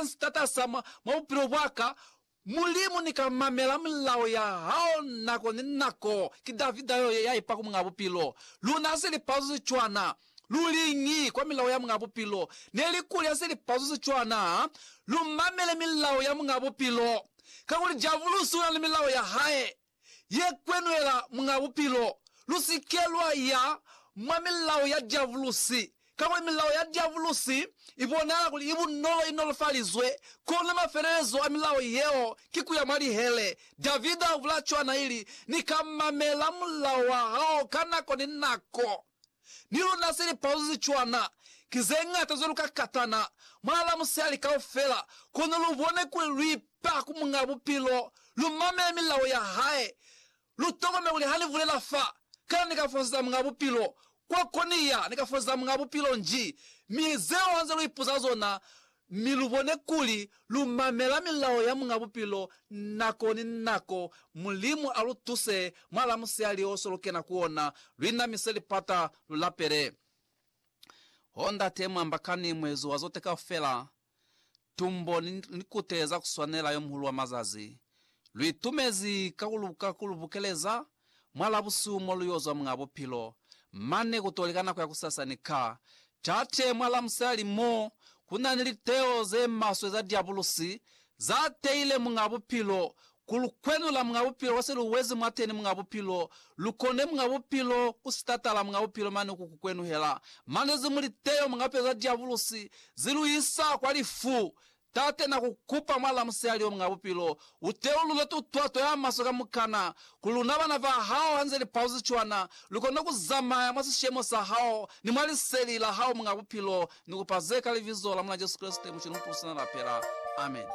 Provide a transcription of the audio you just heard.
Mulimu ensi tatasa mwa bupilo bwaka, Mulimu nika mamela mulao ya hao nako ni nako, ki Davida yo yaipa ku Muñaa Bupilo. Luna hase li pazo ze cwana, lu liñi kwa milao ya Muñaa Bupilo? Neli kuli hase li pazo ze cwana, lu mamele milao ya Muñaa Bupilo, kakuli Diabulusi una ni milao ya hae. ye kwenwela Muñ'a Bupilo, lu si ke lwa ya mwa milao ya diabulusi, kakuli milao ya diabulusi i bonahala kuli i bunolo, i nolofalizwe. Kono mafelelezo a milao yeo ki ku ya mwa lihele. Davida u bula cwana, ili, Ni ka mamela mulao wa hao ka nako ni nako. Ni luna se lipauzo ze cwana ki ze ñata cwalo ka katana mwa la musihali kaufela, kono lu bone kuli lu ipa ku Muñ'a Bupilo, lu mamele milao ya hae, lu tokomele kuli ha ni bulela fa, kana ni ka fosetsa Muñ'a Bupilo kwa ko ni ya, ni ka fosetsa Muñ'a Bupilo nji, mi zeo ha nze lu ipuza zona, mi lu bone kuli lu mamela milao ya Muñ'a Bupilo nako ni nako. Mulimu a lu tuse mwa lamusihali o so lu kena ku ona, lu inamise lipata, lu lapele. Oh, Ndate, mu amba kani, Muezi wa zote kaufela, Tumbo ni likute za ku swanela, Yo Muhulu wa mazazi, lu itumezi ka ku lu bukeleza. mwa labusihu mo lu yo zwa mwa bupilo, mane ku to li ka nako ya kusasa ni ka tate mwa lamusali mo ku na ni liteo ze maswe za diabulusi za teile mwa bupilo, ku lu kwenula mwa bupilo kwa se lu wezi mwateni mwa bupilo, lu kone mwa bupilo ku sitatala mwa bupilo mane ku ku kwenuhela. Mane ze mu liteo mwa peo za diabulusi zi lu isa kwa lifu Tate, na ku kupa mwala musihali omunga bupilo, u teulule tutwa to ya maswe kamukana, kuli luna bana ba Hao hanze li pauzi cwana, lu kone ku zamaya mwa sishemo sa Hao ni mwa Liseli la Hao munga bupilo. Ni kupa ze ka Libizo la Mulena Jesu Kreste, Muculu Mupulusina, lapela. Amen.